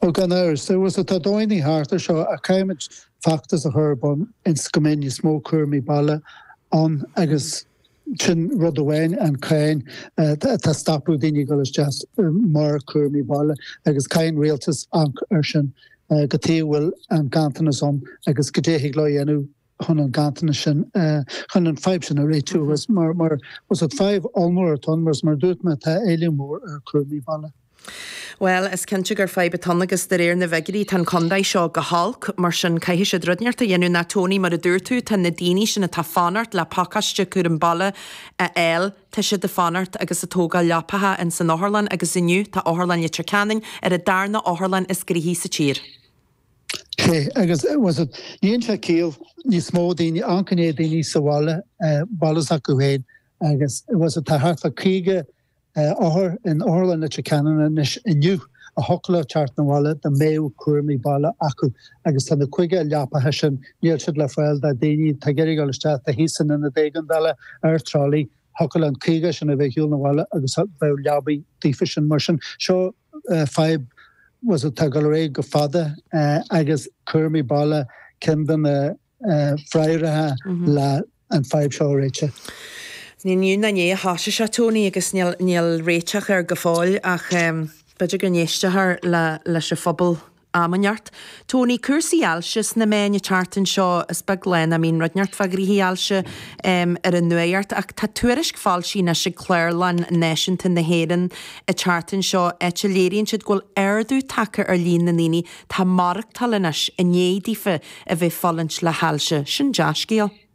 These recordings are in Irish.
Ó, gan amhras. agus tá dóigheannaí thart air seo ach caithfimid feachtas a chur ar bun ionas go mbeidh níos mó cúramaí baile ann agus sin rud amháin, an cáin atá ag stopadh daoine ag dul isteach mar cúramaí baile agus caithfidh an rialtas amharc air sin cad chuige a bhfuil an ganntanas ann agus caidé a thig leo a dhéanamh chun an ganntanas sin chun an fadhb sin a réitiú agus mar mar bhfuil a fhios agat fadhb ollmhór atá ann mar mar a dúirt mé tá éileamh mór ar chúramaí baile. Well, is cinnte gur fadhb atá ann agus de réir na bhfigirí tá an contae seo go holc, mar sin caithfidh siad rud inteacht a dhéanamh nó Tony mar a dúirt tú tá na daoine sin atá ag fanacht le pacáiste cúram baile a fháil tá siad ag fanacht agus ag tógáil leapacha ins an otharlann agus inniu tá Otharlann Leitir Ceanainn ar an darna otharlann is gnaithí sa tír. sé agus bhfuil a fhios agat níonn sé ciall níos mó daoine a choinneáil daoine sa bhaile baile s'acu féin agus bhfuil a fhios agat tá thart fá caoga othar in Otharlann Leitir Ceanainn anois inniu a thiocfadh leo teacht na bhaile dá mbeadh cúramaí baile acu agus tá na caoga leapacha sin níl siad le fáil do daoine atá ag iarraidh dul isteach tá thíos in Ionad Éigeandála ar trolley thiocfadh leis an caoga sin a bheith ar shiúl na bhaile agus bheadh leabaidh daofa sin mar sin seo fadhb bhfuil a fhios agat atá ag dul ar aghaidh go fada agus cúramaí baile ceann de na freagraí le an fadhb seo a réiteach. Ní inniu ná inné a thosaigh sé, Tony, agus níl réiteach air go fóill ach b'fhéidir go n-éistfear leis an phobal am inteacht. Tony, Cúrsaí ailse sna meáin an tseachtain seo is beag lá nach mbíonn rud inteacht fá ghnoithí ailse ar an nuaíocht ach tá tuairisc foilsithe anois ag Clárlann Náisiúnta na hÉireann an tseachtain seo áit a léiríonn siad go bhfuil ardú tagtha ar líon na ndaoine atá ag maireachtáil anois i ndiaidh daofa a bheith ag fulaingt le hailse. Sin dea-scéal.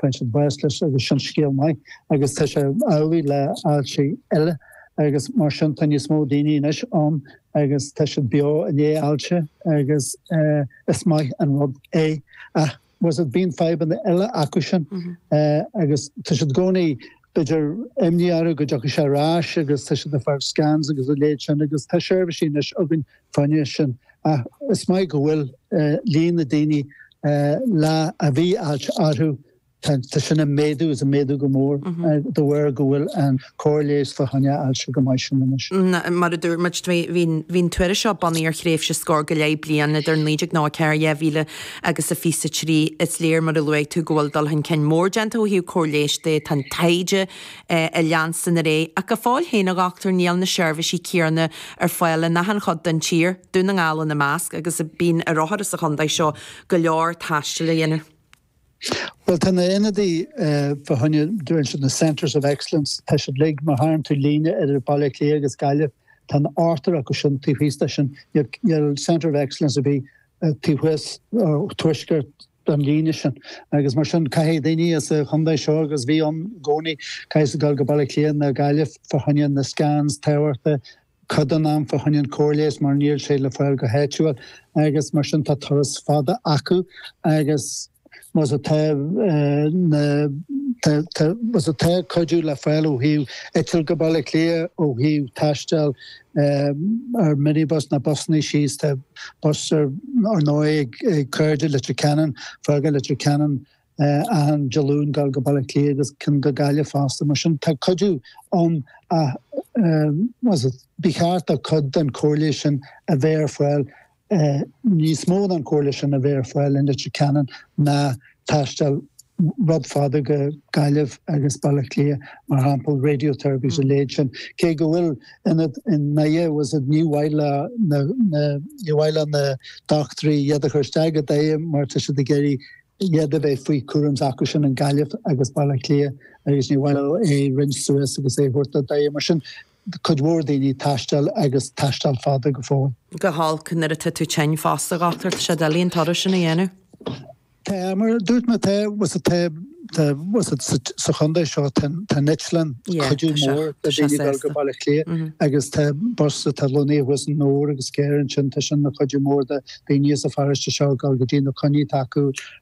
Faigheann siad bás leis agus sin scéal maith agus tá sé amhlaidh le ailsí eile agus mar sin tá níos mó daoine anois ann agus tá siad beo i ndiaidh ailse agus uh, is maith an rud é ach bhfuil a fhios agat bíonn fadhbanna eile acu sin mm -hmm. uh, agus tá siad i gcónaí b'fhéidir, imní orthu go dtiocfaidh sé ar ais agus tá siad ag fáil scans agus a leithéid sin agus tá seirbhísí anois againn fá choinne sin ach is maith go bhfuil líon na daoine le a bhí ailse orthu tá sin ag méadú is ag méadú go mór de bharr go bhfuil an cóir leighis fá choinne ailse chomh maith sin anois. Mar a dúirt muid, bhí an tuairisc seo bunaithe ar thréimhse scór go leith bliain idir 1994, 2000, agus fiche is a trí is léir mar a luaigh tú go bhfuil dul chun cinn mór déanta ó thaobh cóir leighis de, tá an taighde ag leanstan ar aghaidh ach go fóill féin a dhochtúir níl na seirbhísí céanna ar fáil in achan chuid den tír, Dún na nGall ina measc, agus bíonn ar othair sa chontae seo go leor taistil a dhéanamh. Bhuel tá na hionadaí fá choinne dúirt siad na Centres of Excellence, tá siad uilig má tharraing tú líne idir Baile Átha Cliath agus Gaillimh, tá an t-ochtar acu sin taobh thíos de sin, níl Centre of Excellence ar bith taobh thuas tuaisceart den líne sin agus mar sin caithfidh daoine as an chontae seo agus bhí ann i gcónaí, caithfidh siad dul go Baile Átha Cliath nó Gaillimh fá choinne na scans tábhachta, cuid den am fá choinne an chóir leighis mar níl sé le fáil go háitiúil agus mar sin tá turas fada acu agus. Anois tá anois tá cuidiú le fáil ó thaobh eitilt go Baile Átha Cliath ó thaobh taisteal ar minibus nó busanna síos tá bus ar ndóigh ag Cairde Leitir Ceanainn ag fágáil Leitir Ceanainn achan Dé Luain dul go Baile Átha Cliath agus cionn go Gaillimh fosta mar sin tá cuidiú ann ach ba cheart do cuid den chóir leighis sin a bheith ar fáil níos mó den chóir leighis sin a bheith ar fáil i Leitir Ceanainn ná taisteal rud fada go Gaillimh agus Baile Átha Cliath, mar shampla, radiotherapy is a leithéid sin. Cé go bhfuil ionad i nDoire agus ní mhaith le na, na, ní mhaith le na dochtúirí iad a chur isteach go Doire mar tá siad ag iarraidh iad a bheith faoi cúram s'acu sin in Gaillimh agus Baile Átha Cliath agus ní mhaith leo é roinnt suas agus é a thabhairt do Dhoire. Mar sin cuid mhór daoine taisteal agus taisteal fada go fóill. go holc nuair atá tú tinn fosta, a dhochtúir, tá sé doiligh an turas sin a dhéanamh. Tá, mar a dúirt mé, tá, sea, tá, tá, sea, sa chontae seo tá an eitleán cuidiú mór do dhaoine dul go Baile Átha Cliath agus tá bus, tá lóntaí thuas i nDobhar agus carr ansin, tá sin ina chuidiú mór do dhaoine as an pharóiste seo dul go dtí na coinní atá acu